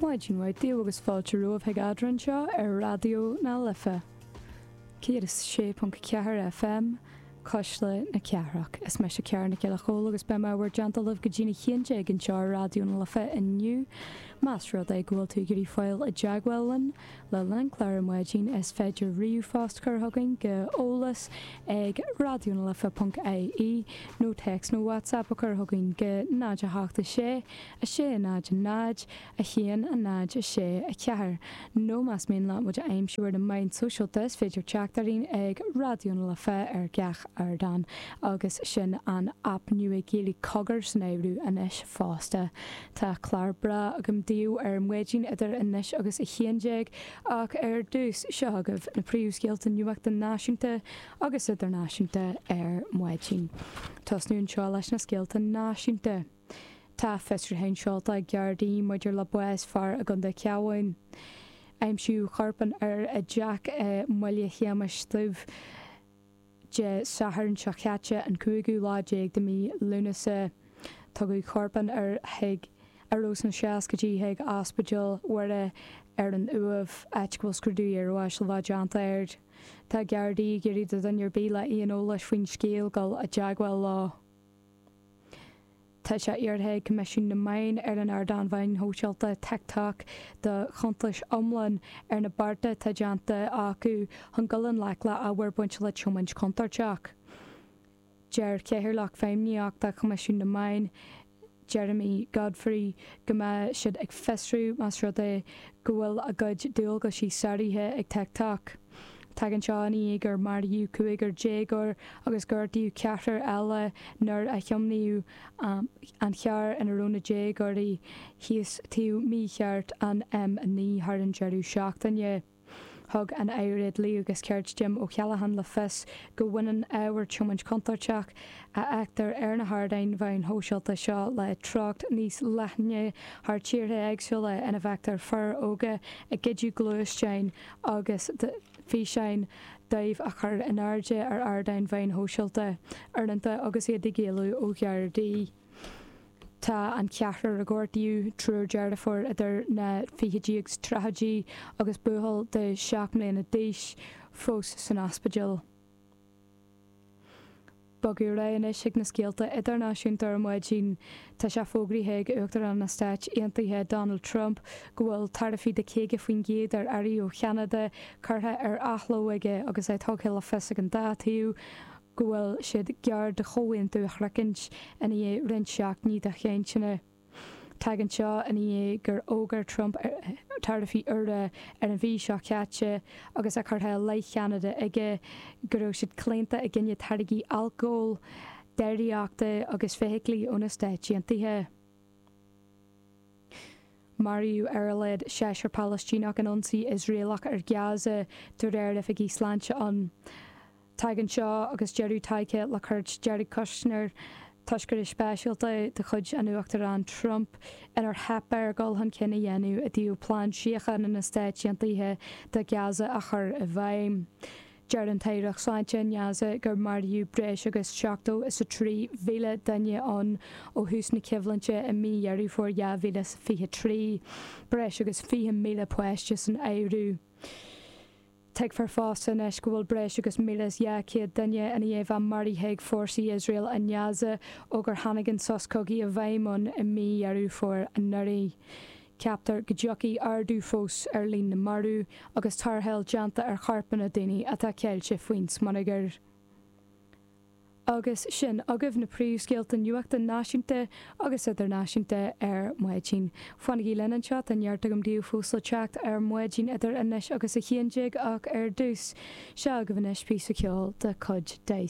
Maidin mhaith daoibh agus fáilte romhaibh chuig Ardán anseo ar Raidió na Life 106.4 FM, Cuisle na Cathrach. Is mise Ciara Nic Giolla Chomhaill agus beidh mé i bhur dteannta linn go dtí a haon déag anseo ar Raidió na Life inniu. Más rud é go bhfuil tú ag iarraidh fáil i dteagmháil linn, Le linn an chláir ar maidin is féidir ríomhphost a chur chugainn go eolas ag Raidió na Life ponc IE nó téacs nó WhatsApp a chur chugainn go 0 8 6 6 0 0 1 0 6 4 nó más mian leat muid a aimsiú ar na meáin sóisialta is féidir teacht orainn ag Raidió na Life ar gach ardán agus sin an aip nua Gaeilge Cogar san áireamh anois fosta. Tá clár breá agam daoibh ar maidin idir anois agus a haon déag ach ar dtús, seo agaibh na príomhscéalta nuachta náisiúnta agus idirnáisiúnta ar maidin. Tosnú anseo leis na scéalta náisiúnta. Tá fiosrúcháin seolta ag Gardaí maidir le bás fear i gContae an Chabháin. Aimsíodh corp an fhir i dteach i mBaile Shéamais Dhuibh. Dé Sathairn seo caite, an cúigiú lá déag de mhí Lúnasa, tugadh corp an fhir, a raibh sna seascaidí, chuig Ospidéal Mhuire ar an Uaimh, áit go bhfuil scrúdú iarbháis le bheith déanta air. Tá Gardaí ag iarraidh ar dhuine ar bith le haon eolas faoin scéal dul i dteagmháil leo. Tá sé iarrtha ag Coimisiún na Meán ar an ardán mheáin shóisialta TikTok do chuntas iomlán ar na bearta atá déanta acu chun dul i ngleic le hábhar bainte le tiomáint chontúirteach. Deir Cathaoirleach Feidhmníochta Choimisiún na Meán, Jeremy Godfrey, go mbeidh siad ag fiosrú más rud é go bhfuil a gcuid dualgais sáraithe ag TikTok. Tagann seo ina dhiaidh gur maraíodh cúigear déagóir agus gortaíodh ceathrar eile nuair a tiomáineadh an charr ina raibh na déagóirí síos taobh mícheart an M9 thar an deireadh seachtaine. Thug an tAire Dlí agus Cirt Jim O'Callaghan le fios go mbaineann ábhar tiomáint chontúirteach a fheictear ar na hardáin mheáin shóisialta seo le treocht níos leithne thar tíortha éagsúla ina bhfeictear fir óga ag goid gluaisteáin agus físeáin díobh a chur in airde ar ardáin mheáin shóisialta, uaireanta agus iad ag éalú ó Ghardaí. Tá an ceathrar a gortaíodh, triúr deirfiúr idir na fichidí agus tríochaidí agus buachaill de sheacht mbliana d'aois, fós san ospidéal. Bogadh ar aghaidh anois chuig na scéalta idirnáisiúnta ar maidin. Tá sé fógraithe ag Uachtarán na Stát Aontaithe Donald Trump go bhfuil taraifí de 50% ar earraí ó Cheanada curtha ar athló aige agus é tugtha le fios ag an dá taobh go bhfuil siad gar do chomhaontú a shroichint i ndiaidh roinnt seachtainí de chainteanna. Tagann seo ina dhiaidh gur fhógair Trump taraifí úra ar an mhí seo caite agus é curtha i leith Cheanada aige go raibh siad claonta i gcoinne táirgí alcóil, déiríochta agus feithiclí ó na Stáit Aontaithe. Maraíodh ar a laghad seisear Palaistíneach in ionsaí Iosraelach ar Gaza, de réir oifigigh sláinte ann. Tagann seo agus deireadh tagtha le cuairt Jared Kushner, toscaire speisialta de chuid an Uachtaráin Trump, inar theip air dul chun cinn a dhéanamh i dtaobh plean síochána na Stáit Aontaithe do Ghaza a chur i bhfeidhm. Deir an tAireacht Sláinte i nGaza gur maraíodh breis agus seachtó is a trí mhíle duine ann ó thús na coimhlinte i mí Dheireadh Fómhair 2023, breis agus fiche míle páiste san áireamh. Tuigtear fosta anois go bhfuil breis agus míle is dhá chéad duine i ndiaidh a bheith maraithe ag fórsaí Iosrael i nGaza ó gur tháinig an sos cogaidh i bhfeidhm ann i mí Dheireadh Fómhair anuraidh. Ceaptar go dtiocfaidh ardú fós ar líon na marbh agus tarrtháil déanta ar chorpanna daoine atá ceilte faoin smionagar. Agus sin agaibh na príomhscéalta nuachta náisiúnta agus idirnáisiúnta ar maidin. Fanaigí linn anseo, tá neart agam daoibh fós le teacht ar maidin idir anois agus a haon déag ach ar dtús, seo agaibh anois píosa ceoil de chuid Dice.